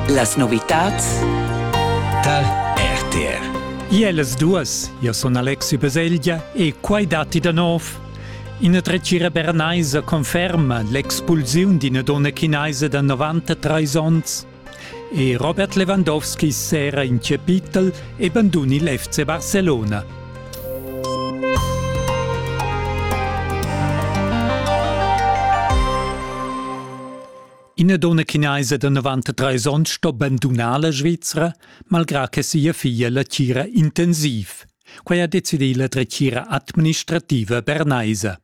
Las novitads tar RTR. Iellas duas, io sun Alexi Beseglia e quai datti da nov. Ina dretgira bernaisa conferma l'expulsiun d'ina donna chinaisa da 93 onns e Robert Lewandowski s'era in chapitel e banduni l'FC Barcelona. Ina donna chinaisa da 93 onns sto bandunar la Svizra, malgrà che sia figlia la tgira intensiv. Quai ha decidì la dretgira administrativa bernaisa.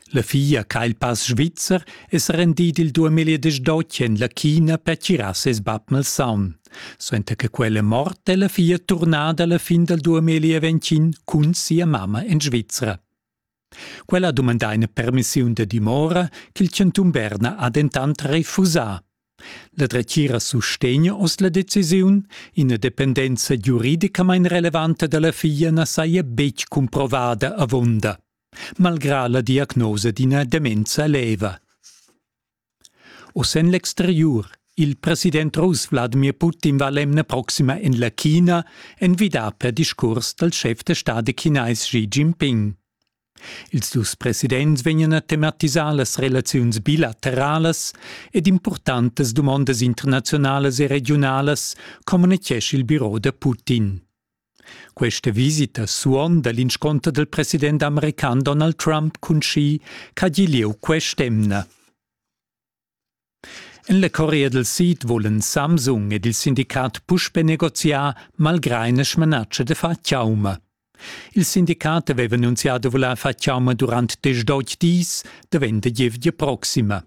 La figlia che ha il pass svizzer è sa rendida il 2012 en la China per tirar ses bab malsaun. Suenter che quella è morta è la figlia turnada alla fin del 2020 cun sia mamma in Svizzera. Quella ha dumandà ina permissiun da dimora ch'il chantun Berna ha dentant refusà. La dretgira sustegna oz la decisiun, ina dependenza giuridicamain relevanta da la figlia na saja betg cumprovada avunda, malgrà la diagnosa d'ina demenza leva. Oz en l'exteriur. Il president russ Wladimir Putin va l'emna proxima en la China envidà per discurs dal schef da stadi chinais Xi Jinping. Ils dus presidents vegnan a tematisar las relaziuns bilateralas ed impurtantas dumondas internazialas e regiunalas, communitgescha il biro da Putin. Questa visita suonda l'insconter del president american Donald Trump cun Xi ch'ha gi lieu quest'emna. En la Corea del Sid volen Samsung ed il sindicat puspe negoziar malgrà ina smanatschia de far chauma. Il sindicat aveva annunzià de voler far chauma durant diesch dis, davent la gievgia proxima.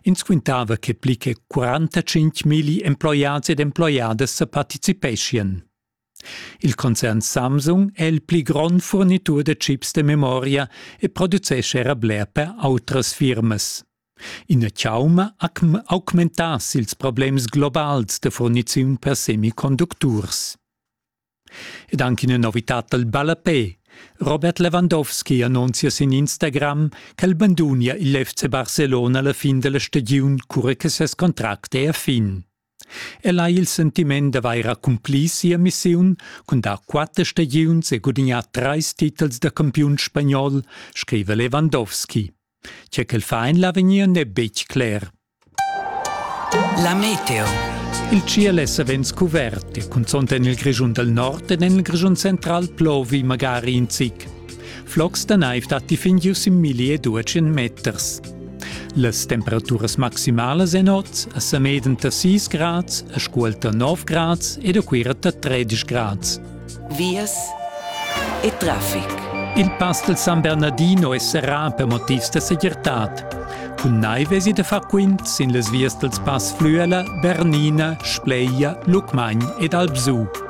Ins quintava che pli che 45 milli emploiads ed emploiadas sa participeschien. Il concern Samsung è il pli grond furnitur da chips da memoria e producescha era bler per autras firmas. Ina chauma ha augmentass ils problems globals da furniziun per semiconducturs. Ed anche una novità dal ballapè. Robert Lewandowski annunzia sin Instagram ch'el bandunia il FC Barcelona alla fin della stagiun cura che ses contract è a fin. El ha il sentiment d'avair accumplì sia missiun cun dar quatter stagiuns e gudignar trais titels da campiun spagnol, scriva Lewandowski. Tge ch'el fa en l'avegnir n'è betg cler. La meteo. Il ciel è savens cuvert e cunzont en il Grischun dal nord ed en il Grischun central plovi magari in zic. Flocs da naiv datti fin gius in milli e duecen meters. Las temperaturas maximalas en oz a Sameden da 6 grads, a Scuol da 9 grads ed a Cuira da 13 grads. Vias e traffic. Il pass del San Bernardino è serrà per motivs da segirtad. Cun naive si da far quint sin las vias dels Pass Flüela, Bernina, Spleia, Lucmagn ed Alpsu.